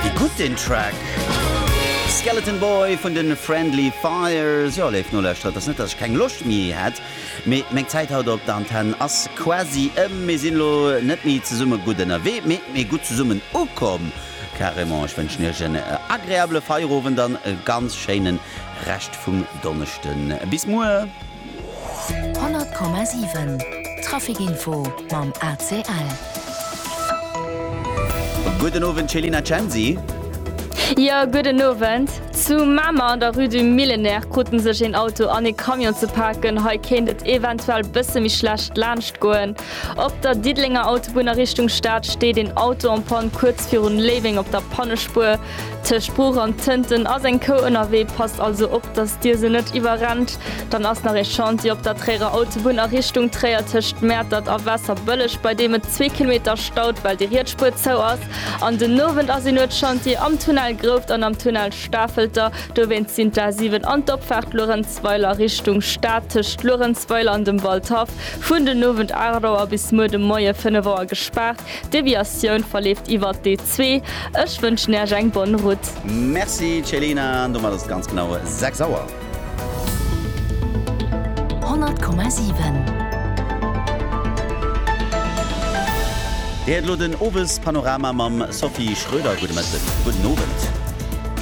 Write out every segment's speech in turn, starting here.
Wéi gutt den Track! Skeleton Boy vun de Friendly Fires. Jo, léif Nolauschterer, et ass net, datt ech keng Loscht méi hätt, mee meng Zäit haut op der Antenn ass quasi ëm. Mir sinn elo net méi zesumme gutt ënnerwee, mee mee gutt zesummen ukomm, carrément. Ech wënschen iech en agreabele Feierowend an e ganz schéine Rescht vum Donneschden. Bis muer! 100,7 Trafic Info mam ACL. Gudden Owend Céline a Censi. Jo, gudden Owend. Zu Mamer an der Rue du Millénaire krute sech een Auto an ee Camion ze paken. Hei kéint et eventuell bësse méi schlecht laanscht goen. Op der Diddelenger Autobunn a Richtung Stad steet een Auto en Panne kuerz virun Léiweng op der Pannespuer. Tëscht Bruch an Tënten ass eng Kou ënnerwee, passt also op, dass Dir se net iwwerrennt. Dann ass nach ee Chantier op der Tréierer Autobunn a Richtung Tréier tëscht Mäertert a Waasserbëlleg, bei deem et zwee Kilometer staut, well déi riets Spuer zou ass. An den Owend ass een huet Chantier am Tunnel Grouft an am Tunnel Stafelter. Dowéinst sinn d'A 7 an d'Opfaart Luerenzweiler Richtung Stad tëscht Luerenzweiler an dem Waldhaff vun den Owend 8 Auer bis muer de Moie 5 Auer gespaart. D'Deviatioun verleeft iwwert d'E2. Ech wënschen Äech eng bonne route. Merci Celina, an domat ass et ganz genau 6 Auer. 100,7. Dir héiert elo den Owespanorama mam Sophie Schröder. Gudde Mëtten, gudden Owend.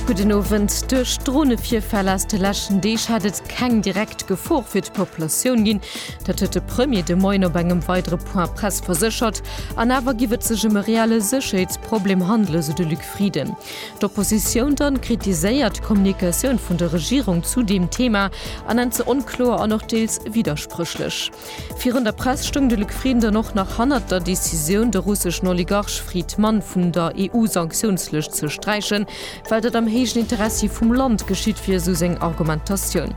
Gudden Owend. Duerch Dronevirfäll aus de leschten Deeg hätt et keng direkt Gefor fir d'Populatioun ginn. Dat huet de Premier de Moien op engem weidere Point Presse verséchert. An awer giff et sech ëm e reelle Sécherheetsproblem handelen, esou de Luc Frieden. D'Oppositioun dann kritiséiert d'Kommunikatioun vun der Regierung zu deem Thema a nennt se onkloer an och deels widderspréchlech. Virun der Press stoung de Luc Frieden dann och nach hannert der Decisioun, de russeschen Oligarch Friedman vun der EU-Sanktiounslëscht ze sträichen. Well dat am héijen Interessi vum Land geschitt, wier esou seng Argumentatioun.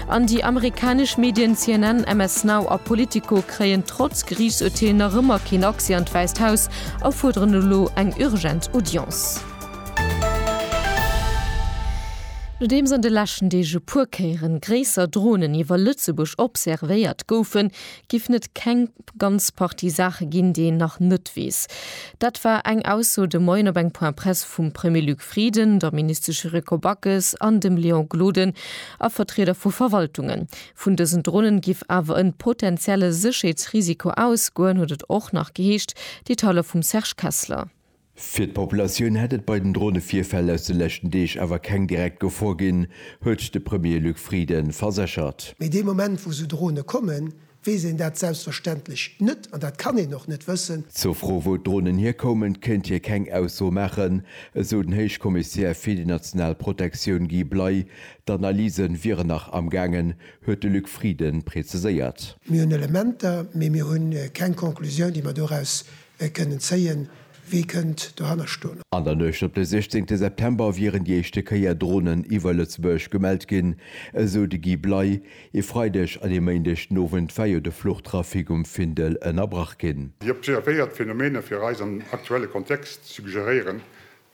An déi amerikanesch Medien CNN, MS Now a Politico kréien trotz Geriichtsurteel nach ëmmer keen Accès an d'Wäisst Haus a fuerderen elo eng urgent Audience. Nodeems an de leschten Deeg e puer Kéieren gréisser Dronen iwwer Lëtzebuerg observéiert goufen, giffen et keng. Ganz Partie Saache ginn, déi een nach net weess. Dat war eng Ausso de Moien op eng Point Presse vum Premier Luc Frieden, der Ministesch Yuriko Backes an dem Léon Gloden a Vertrieder vu Verwaltungen. Vun dësen Dronen giff awer en potentielle Sécherheetsrisiko ausgoen, huet et och nach geheescht. Detailer vum Serge Kessler. Fir d'Populatioun hätt et bei den Dronevirfäll aus de leschten Deeg awer keng direkt Gefor ginn, huet de Premier Luc Frieden verséchert. Mee dee Moment, wou sou Drone kommen, weess een dat selbstverständlech net an dat kann een och net wëssen. Zur Fro, wou d'Dronen hierkoumen, kéint hie keng Ausso maachen, esou den Héichkommissär fir déi national Protektioun Guy Bley. D'Analyse wieren nach am gaangen, huet de Luc Frieden präziséiert. Mir hunn Elementer, mee mir hu keng Conclusioun, déi mer doraus Wee kënnt en zéien? Wee kënnt dohanner stoen? An der Nuecht op de 16 September wieren déi éischte Kéier Dronen iwwer Lëtzebuerg gemellt ginn, esou de Guy Bley. E Freideg an e Méindeg den Owend war jo de Fluchtrafic um Findel ënnerbrach ginn. Déi observéiert Phenomene fir eis am aktuelle Kontext suggeréieren,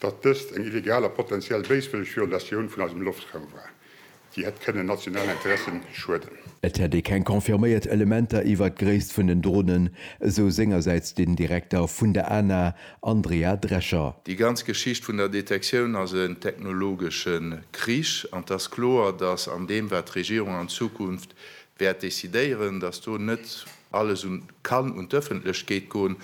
datt dëst eng illegal a potentiell béiswëlleg Violatioun vun eisem Loftraum war, déi hätt kënnen nationalen Interessen schueden. Et hätt ee keng confirméiert Elementer iwwert d'Gréisst vun den Dronen, esou sengersäits den Direkter vun der ANA, Andrea Drescher. Déi ganz Geschicht vun der Detektioun ass en technologesche Krich, an et ass kloer, datt an deem, wat d'Regierung an Zukunft wäert decidéieren, datt do net Alles un kann un d'Öffentlechkeet goen,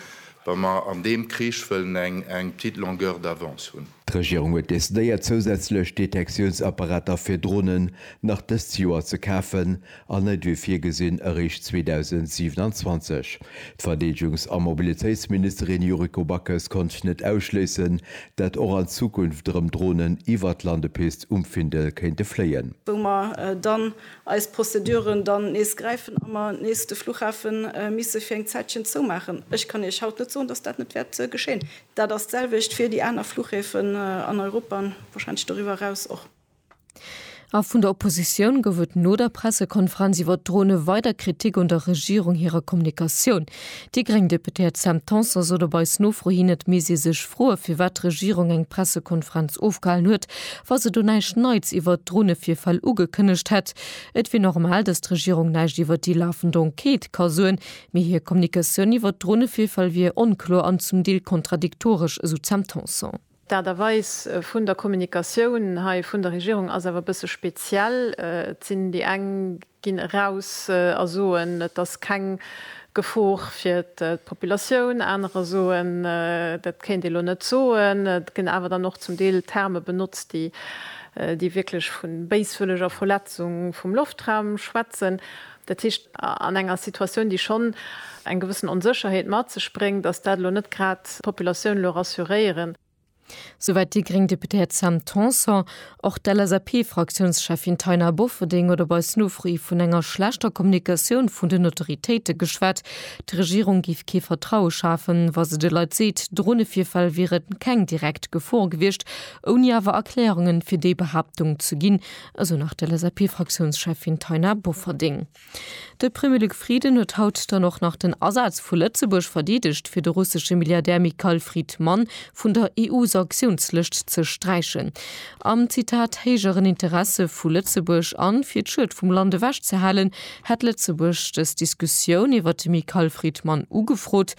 wa mer an deem Krich wëllen eng eng petite longueur d'avance hunn. D'Regierung huet decidéiert zousätzlech Detektiounsapparater fir Dronen nach dëst Joer ze kafen an net wéi virgesinn eréischt 2027. D'Verdeedegungs a Mobilitéitsministerin Yuriko Backes konnt net ausschléissen, dat och an Zukunft erëm Dronen iwwer d'Landepist um Findel kéinte fléien. wou mer dann eis Prozeduren dann nees gräifen a mer nees de Fluchhafe misse fir eng Zäitchen zoumaachen. Ech kann Iech haut net soen, datt dat net wäert geschéien. Dat ass d'selwecht fir déi aner Fluchhäfen an Europa an warscheinlech doriwwer eraus och. A vun der Oppositioun gouf et no der Pressekonferenz iwwert d'Drone weider Kritik un der Regierung hirer Kommunikatioun. Déi gréng Deputéiert Sam Tanson sot op eis Nofro hin, et misst ee sech froen, firwat d'Regierung eng Pressekonferenz ofgehalen huet, wa se do näischt Neits iwwert d'Dronevirfäll ugekënnegt hätt. Et wier normal, datt d'Regierung näischt iwwert déi lafend Enquête ka soen, mee hir Kommunikatioun iwwert d'Dronevirfäll wier onkloer an zum Deel kontradiktoresch, esou d'Sam Tanson. D'Aart a Weis vun der Kommunikatioun hei vun der Regierung ass awer e bësse speziell. Et sinn déi eng, ginn eraus a soen, et ass keng Gefor fir d'Populatioun, anerer soen, dat kéint ee lo net soen. Et ginn awer dann och zum Deel Terme benotzt, déi déi wierklech vu béiswëlleger Verletzung vum Loftraum schwätzen. Dat heescht, an enger Situatioun, déi schonn eng gewëssen Onsécherheet mat sech bréngt, ass dat elo net grad d'Populatioun elo rassuréieren. Souwäit déi gréng Deputéiert Sam Tanson. Och d'LSAP-Fraktiounscheffin Taina Bofferding huet op eis Nofro hi vun enger schlechter Kommunikatioun vun den Autoritéite geschwat. D'Regierung géif kee Vertraue schafen, wa se de Leit seet, Dronevirfäll wieren keng direkt Gefor gewiescht, ouni awer Erklärungen fir déi Behaaptung ze ginn, esou nach d'LSAP-Fraktiounscheffin Taina Bofferding. De Premier Luc Frieden huet haut dann och nach den Asaz vu Lëtzebuerg verdeedegt, fir de russesche Milliardär Mikhail Fridman vun der EU-Sanktiounslëscht ze sträichen. Am, Zitat, héijeren Interesse vu Lëtzebuerg an fir d'Schued vum Land ewechzehalen, hätt Lëtzebuerg dës Diskussioun iwwert de Mikhail Fridman ugefrot,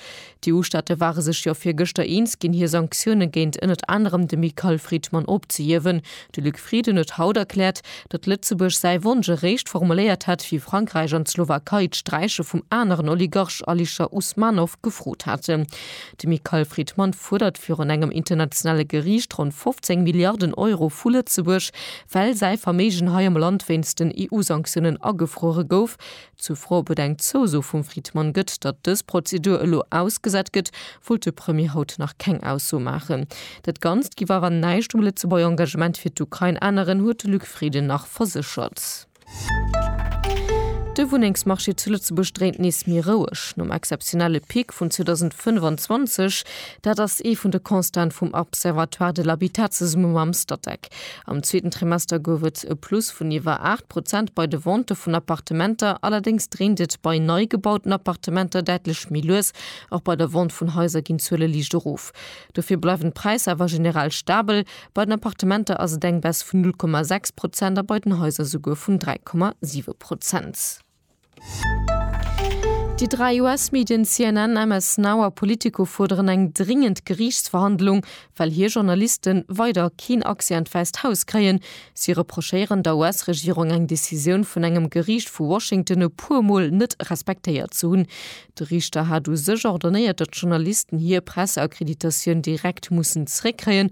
D'EU-Staate ware sech jo virgëschter eens ginn, hir Sanktioune géint ënnert anerem de Michael Friedman ophzehiewen. De Luc Frieden huet haut erkläert, datt Lëtzebuerg säi Wonsch eréischt formuléiert hätt, wéi Frankräich an d'Slowakei d'Sträiche vum aneren Oligarch Alisher Usmanov gefrot haten. De Michael Friedman fuerdert virun engem internationale Geriicht ronn 15 Milliarden Euro vu Lëtzebuerg, well säi Verméigen hei am Land wéinst den EU-Sanktiounen agefruere gouf. Zur Fro, ob et eng Zouso vum Fridmann gëtt, datt dës Prozedur elo ausgesat gëtt, wollt de Premier haut nach keng Ausso maachen. Dat Ganzt giff awer näischt um Lëtzebuerger Engagement fir d'Ukrain änneren, huet de Luc Frieden nach verséchert. De Wunnengsmarché zu Lëtzebuerg dréint nees méi roueg nom exzeptionelle Pic vun 2025. Dat ass ee vun de Constaten vum Observatoire de l'habitat zesumme mam Statec. Am zweeten Trimester gouf et e Plus vun iwwer 8. Prozent bei de Ventë vun Appartementer, allerdéngs dréint et bei nei gebauten Appartementer däitlech méi lues. Och bei der Vente vun Haiser ginn d'Zuele liicht erof. Dofir bleiwen d'Präisser awer generell stabel, bei den Appartementer ass et eng Baisse vun 0,6 Prozent a bei den Haiser souguer vun 3,7 Prozent. Déi dräi US-Medien CNN, MS Now a Politico fuerderen eng dringend Geriichtsverhandlung, well hir Journaliste weider keen Accès an d'Wäisst Haus kréien. Si reprochéieren der US-Regierung, eng Decisioun vun engem Geriicht vu Washington e puer Mol net respektéiert ze hunn. De Riichter hat u sech ordonéiert, datt d'Journalisten hir Presseakkreditatioun direkt mussen zeréckkréien.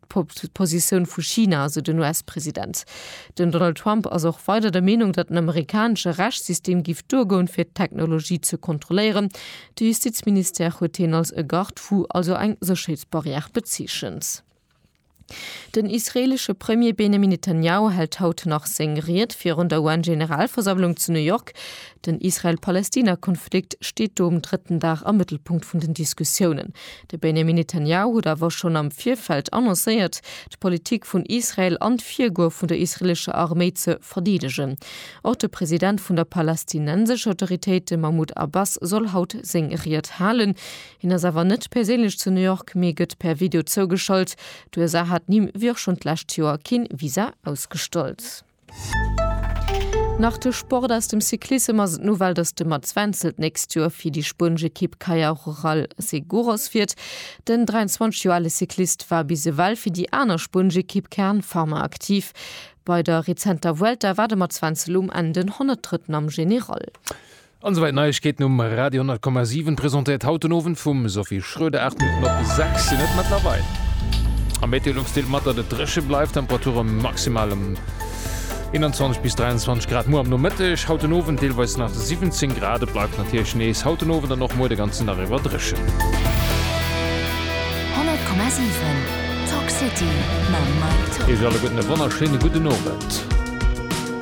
D'Positioun vu China, esou den US-President. Den Donald Trump ass och weider der Meenung, datt den amerikanesche Rechtssystem giff duergoen, fir d'Technologie ze kontrolléieren. De Justizministère huet hien als e Garde-fou, also eng Sécherheetsbarrière, bezeechent. Den israeelesche Premier Benjamin Netanjahu hält haut nach seng Ried virun der UN-Generalversammlung zu New York. Den Israel-Palästina-Konflikt steet do um drëtten Dag am Mëttelpunkt vun den Diskussiounen. De Benjamin Netanjahu huet awer schonn am Virfeld annoncéiert, d'Politik vun Israel an d'Virgoe vun der israelescher Arméi ze verdeedegen. Och de President vun der palästinensescher Autoritéit, de Mahmoud Abbas, soll haut seng Ried halen. Hien ass awer net perséinlech zu New York, mee gëtt per Video zougeschalt. D'USA hat him, wéi och schonn d'lescht Joer, kee Visa ausgestallt. Nach de Sport aus dem Cyclissem ass et nowell, dass de Mats Wenzel d'nächst Joer fir déi spuenesch Ekipp Caja Rural Seguros fiert. Den 23 Joer ale Cyclist war bis ewell fir déi aner spuenesch Ekipp Kern Pharma aktiv. Bei der rezenter Vuelta war de Mats Wenzel um Enn den 103. am General. An souwäit Neiegkeeten um Radio 100,7, presentéiert haut den Owend vum Sophie Schröder. 8 Minutten op 6 sinn et mëttlerweil. Am Meteolux deelt mat, datt et dréche bleift, Temperature maximal ëm 21 bis 23 Grad muer am Nomëtteg. Haut den Owend deelweis nach 17 Grad. Et bleift natierlech nees haut den Owend an och muer de ganzen Dag iwwer dréchen. 100,7 Talk City mam Mike Tock. Iech alleguerten e wonnerschéine gudden Owend.